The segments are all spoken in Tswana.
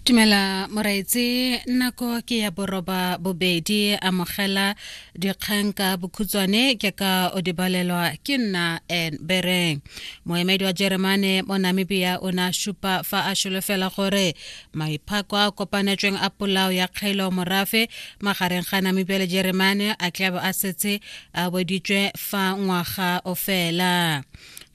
Tumela moraetse nako ke ya boroba bobedi amogela dikgang ka bokhutswane ke ka o dibalelwa ke nna en bereng moemedi wa jeremane mo namibia o ne a supa fa a solofela gore maiphako a kopanetsweng a polao ya kgaelo morafe magareng ga namibia le jeremane a tlabe a setse a boditswe fa ngwaga o fela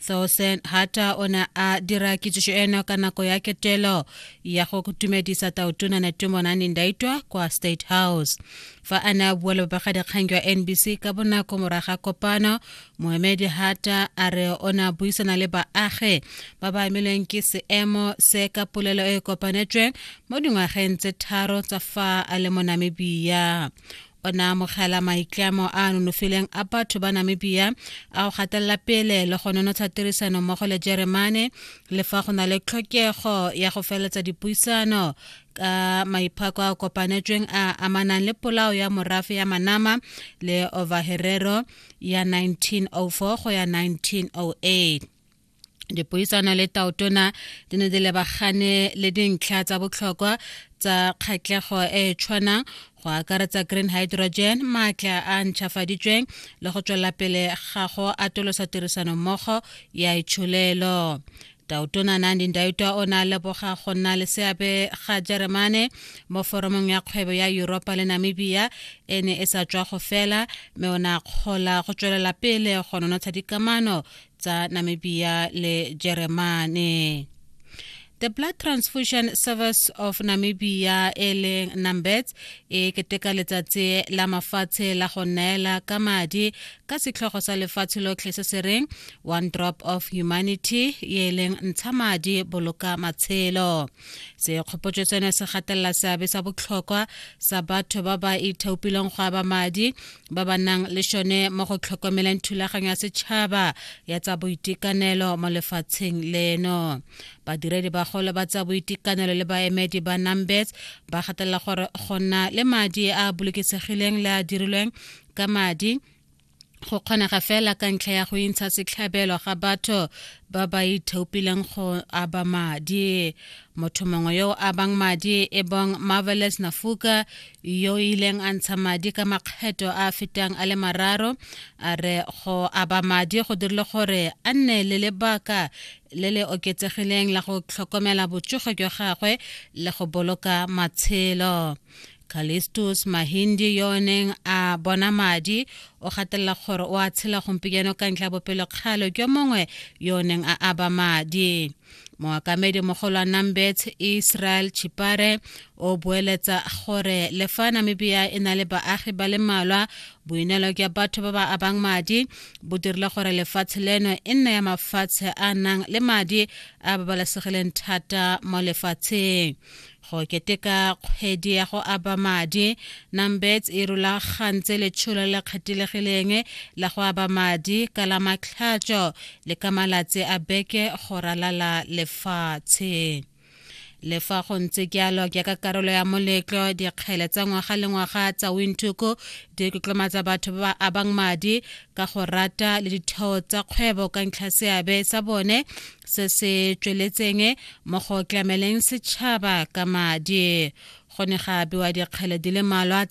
Thosen Hata o ne a dira kitsiso eno ka nako ya ketelo ya go tumedisa taotona Netumonane Ndaitwa kwa State House. Fa a ne a bua le babegadikgang jwa NBC ka bonako moraga kopano, moemedi Hata a re o ne a buisana le baagi ba ba amilweng ke seemo se ka polelo e e kopanetsweng mo dingwageng tse tharo tsa fa a le mo Namibia. o ne amogela maitlamo a a nonofileng a batho ba namibia a go gatelela pele le go nonotsha tirisano mmogo le jeremane le fa go na le tlhokego ya go feletsa dipuisano ka maiphako a kopanetsweng a amanang le polao ya morafe ya manama le overherero ya 1904 go ya 1908 dipuisano le taotona di ne di lebagane le dintlha tsa botlhokwa tsa kgatlhego e e tshwanang go akaretsa green hydrogen maatla a ntšhafaditsweng le go tswela pele ga go atolosa tirisano mmogo ya itsholelo tautona nandin daitwa o ne a leboga go nna le seabe ga jeremane mo foromong ya kgwebo ya yuropa le namibia e ne e sa tswa go fela mme o ne a kgola go tswelela pele go nonotsha dikamano tsa Namibia le Jeremane. The Blood Transfusion Service of Namibia e leng NAMBETS e keteka letsatsi la mafatshe la go neela ka madi ka setlhogo sa lefatshe lotlhe se se reng One Drop of Humanity e leng ntsha madi boloka matshelo. Sekgopotso seno se gatelela seabe sa botlhokwa sa batho ba ba ithaopileng go aba madi ba ba nang le šone mo go tlhokomeleng thulaganyo ya setšhaba ya tsa boitekanelo mo lefatsheng leno badiredi bagolo ba tsa boitekanelo le baemedi ba numbers ba gatelela gore go nna le madi a bolokesegileng le a dirilweng ka madi go kgonega fela ka ntlha ya go intsha setlhabelo ga batho ba ba ithaopileng go aba madi motho mongwe yo o abang madi e bong marvelous nafuka yo o ileng a ntsha madi ka makgetho a a fetang a le mararo a re go aba madi go dirile gore a nne le lebaka le le oketsegileng la go tlhokomela botsogo jwa gagwe le go boloka matshelo Callistus Mahindi yo o neng a bona madi o gatelela gore o a tshela gompieno ka ntlha ya bopelokgale jwa mongwe yo o neng a aba madi moakamedi mogolo wa nambet israel chipare o boeletsa gore le fa namibia e na le baagi ba le mmalwa boineelo jwa batho ba ba abang madi bo dirile gore lefatshe leno e nne ya mafatshe a nang le madi a babalesegileng thata mo lefatsheng go keteka kgwedi ya go aba madi numbets e rulagantse letsholo le kgethilekgileng la go aba madi ka la matlhatso le ka malatsi a beke go ralala lefatshe le fa go ntse jalo jaaka karolo ya moletlo dikgele tsa ngwaga le ngwaga tsa wintuku di tlotlomatsa batho ba ba abang madi ka go rata le ditheo tsa kgwebo ka ntlha seabe sa bone se se tsweletseng mo go tlameleng setšhaba ka madi go ne ga abewa dikgele di le malwa